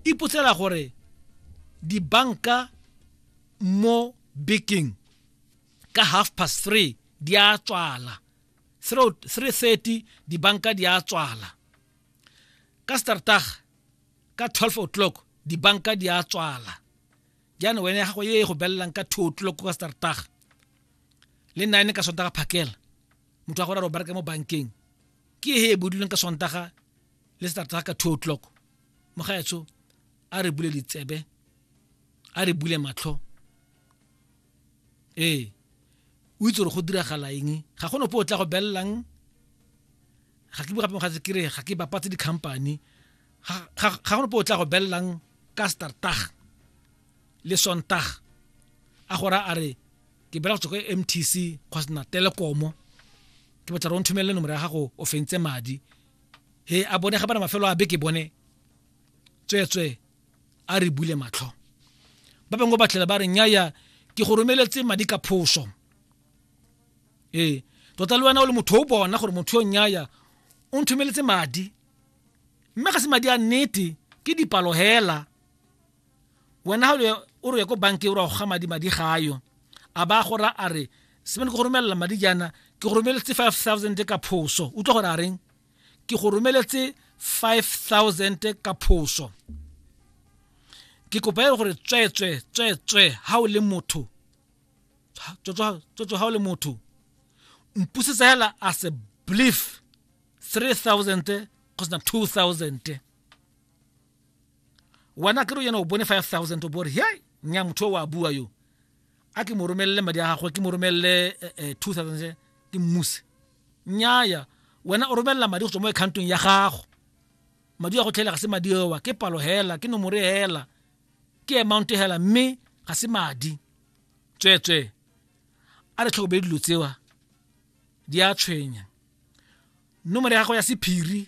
Ipotsela gore dibanka mo bekeng ka half past three di a tswala 330 dibanka di a tswala ka startag ka 12 o'clock dibanka di a tswala jaanong wene ya gago e go belelang ka 2 o'clock ka startag le nine ka sontaga phakela motho wa gore a re o bereka mo bankeng ke e e bodilweng ka sontaga le startag ka 2 o'clock mogaetsho a re bule ditsebe a re bule matlho ee o itse gore go diragala eng ga go nope o tla go belelang ga ke bugape mogatse ke re ga ke bapatse di-company ga go nope o tla go belelang ka startag le sontag a gora a re ke bela go tswa ko m t c kgosna telekomo ke batla re o nthomelele nomoro ya gago o fentse madi he a bone ga bana mafelo a beke bone tsweetswe a re bule matlho ba bangwe ba tlhela ba re nyaya ke go romeletse madi ka phoso ee tota le wena o le motho o bona gore motho yo nyaya o nthomeletse madi mme ga se madi a nnete ke dipalo hela wena ga o re ko bankeng o re go ga madi madi ga ayo a ba gora a re semane ke go romelela madi jaana ke go romeletse five thousand ka phoso utlwa gore a reng ke go romeletse five thousand ka phoso ke kopa e gore tsweetswe tsweetswe ha o le motho tsweetswe ha o le motho mpusetsa hela a se belief 3000 go sena 2000 wena kere yena o bone 5000 o bore he nya motho wa bua yo a ke mo romelele madi a gagwe ke mo romelele 2000 eh, eh, ke mmuse nyaya wena o romelela madi go tswa mo accountong ya gago madi a go tlhela ga se madi ewa ke palo hela ke nomore hela ke amount hela mme ga se madi tsweetswee a re tlhokomele dilo tsewa di a tshwenya nomore ya gago ya sephiri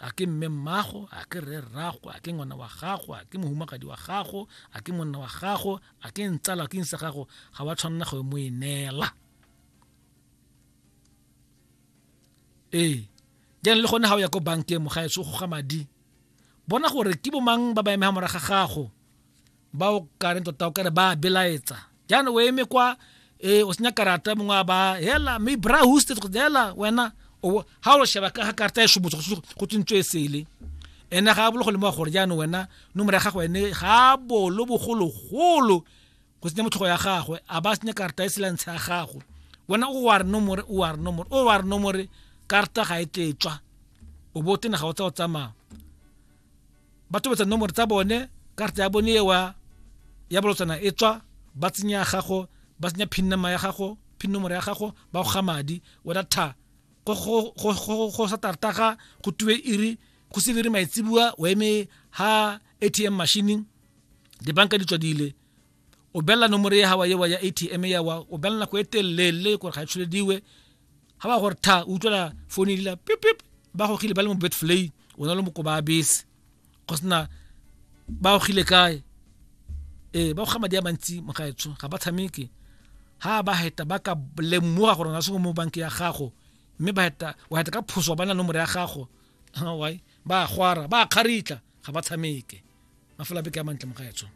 a ke mme mmago a ke rre rrago a ke ngwana wa gago a ke mohumagadi wa gago a ke monna wa gago a ke ntsala ke nsa gago ga wa tshwanela go mo e neela ee jane le gone ga o ya ko bankeng mogaetso go ga madi bona gore ke bomang ba ba emega moraga gago ba o kareng tota o kare ba a belaetsa jaana o eme kwa um o senya karata mongwe a ba hela mme bra hoste hela wena ga o sheba ka ga karata e shomotso go tsentswe e sele ene ga a bolo go lemoga gore jaanong wena nomore ya gago ene ga a bolo bogologolo go senya motlhogo ya gagwe a ba senya karata e selantsha ya gago wena o wa re nomore o wa re nomore o wa re nomore karata ga e tletswa o bo tena ga o tsa o tsamaya ba tobetsa nomoro tsa bone karata ya bone ewa ya bolotsana e tswa ba tsenya ya gago ba tsenya pin number ya gago pin nomoro ya gago ba go ga madi wena tha go sa tartaga go tuwe iri go se dire maitsebua o eme ha atm machine dibanka di tswadile o belela nomoro ya gawa yewa ya atm yawa o belela nako e telele gore ga e tsholediwe ga ba gore tha o utlwela phone e dila pipip ba gogile ba le mo betflay o na le mokoba a bese go sena ba gogile kae ee ba goga madi a mantsi mogaetsho ga ba tshameke ha ba heta ba ka lemoga gore na se mo banke ya gago mme ba heta wa heta ka phoso ba na nomoro ya gago why ba gwara ba kgaritla ga ba tshameke mafela beke ya mantle mogaetsho